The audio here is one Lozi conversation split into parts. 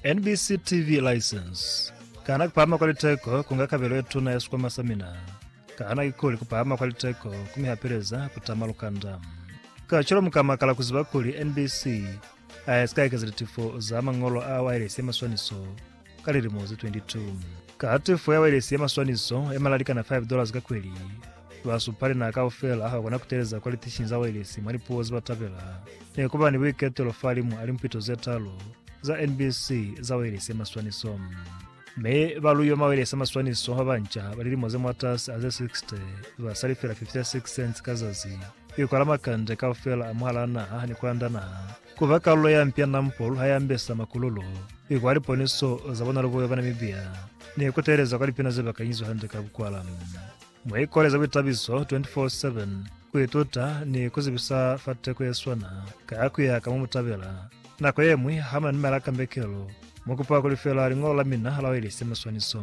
NBC TV license. Kana kupahama kwa liteko kunga kabelo ye tuna ya sikwama sa mina? Kana kikuli kupahama kwa liteko kumihapeleza kutama lukanda? Kacwalo mukamakala kuziba kuli NBC aisika ekeza litifo za mañolo a wailesi ya maswaniso ka lilimo ze 22. Ka tefo ya wailesi ya maswaniso ya malali kana 5 dollars ka kweli, basupalinaa kaufela bakona kuteleza kwa litishinyi za wailesi mwa lipuo zebatabela. Nekuba ni buiketelo fahalimu a limpito zetalu za NBC za wailesi ya maswaniso. Mi baluiwa mwa wailesi ya maswaniso babanca ba lilimo ze mwatasi a ze 60 ba salifela 56 cents ka zazi kuikwala makande kaufela a mwahalaa naha ni kulanda naha. Ku ba kalulo ya mpi ya Nam Pol ha ya ambesa makululu, i kwa liponiso za bona lubuwe ba Namibia, ni ku teeleza kwa lipina ze ba kanyizwa hande ka bukwala. Mwa ikole za buitabiso 24-7, ku ituta ni ku zibisa fa teko ye swana ka ku ya ka mo mu tabela. Nako ye ñwi ha mu na ni malaka mbekelo, mu kupa ku lifela liñolo la mina la Wailesi ya Maswaniso.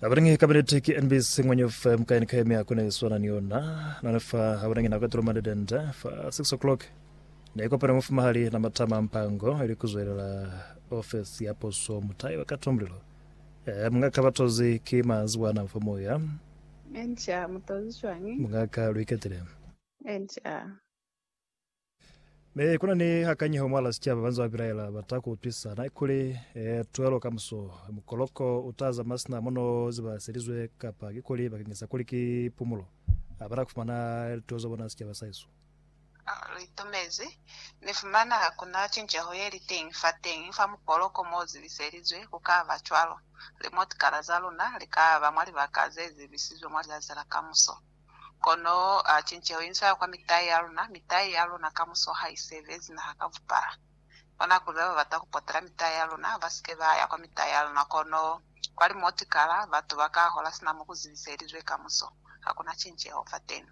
Habanangi kabineti ki NBC Ngwenye Ufe Mukaini Kaya Mia Kuna Iswana Ni Yona Nana Fa Habanangi Nako Etulo Mande Dende Fa 6 O'clock Ne Kopana Mufumahali Na Matama Mpango Ili Kuzwelela Ofesi Ya Puso Mutayi Wa Kata Mulilo E Mungaka Batozi Ki Maziwa Ana Fa Moya Enca Mutozi Cwañi Mungaka Lu Iketile Enca Ne kuna ni hakanyeho mwala sicaba banza babilaela bata ku utwisa na ikuli e, tuelo ka muso mukoloko uta zama sina mono ziba selizwe kapa kikuli bakengesa kuli ki pumulo abana kufumana lituo za bona sicaba sa hesu. Litumezi. Ni fumana hakuna cinceho yeli teñi fateñi fa mukoloko mo zibiselizwe. Ku ka ba cwalo. Limotikala za luna li ka ba mwa libaka ze zibisizwe mwa lizazi la kamuso. Kono a cinceho inz'a kwa mitai ya luna, mitai ya luna kamuso ha i sebezi naha ka bupala. Kona kuli ba ba bata ku potela mitai ya luna ba si ke ba ya kwa mitai ya luna, kono kwa limotikala batu ba ka hola sina mo ku zibiselizwe kamuso. Ha ku na cinceho fateni.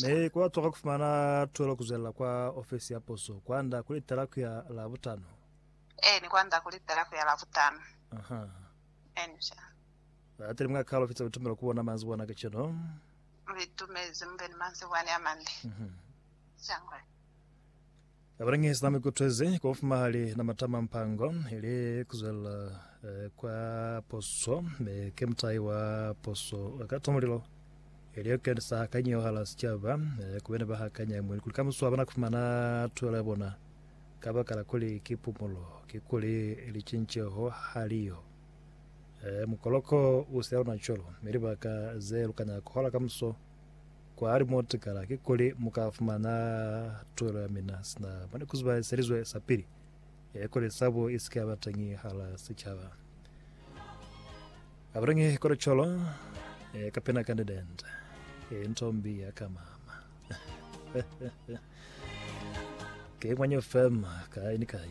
Ne ku atwaha ku fumana tuelo ku zwelela kwa ofisi ya puso kwand'a ku litela ku ya Labutano. Eeni, kwand'a ku litela ku ya Labutano. Eeni, sha. Ateli mwa kalo fitsa litumelo ku ona manzwi wana kacenu. Litumezi mube ni manzwi wani amande. Cangwe. Abanangi sina mikutwezi kwa ufumahali na matama mpango ili kuzwela kwa poso me ke mutai wa poso ka tomulilo ili yokenisa hakanyi yo hala sicaba kubene ba hakanya mwili kuli kamusu abana kufumana tuelo ya bona kabakala kuli ki pumulo kikuli licinceho haliyo Ee, mukoloko u si aluna cwalo, mi libaka ze lu kana ku hola kamuso kwa hali mo tikala ki kuli mu ka fumana tuhelo ya mina sina mwa ni ku zubahiselizwe sa pili, e kuli sabo i si ke ya ba teñi hala sicaba. A buleñi kuli cwalo, e, ka pena ka nidende, e, nto mbi ya ka mama. Ke ngwanyo fema, kai ni kai.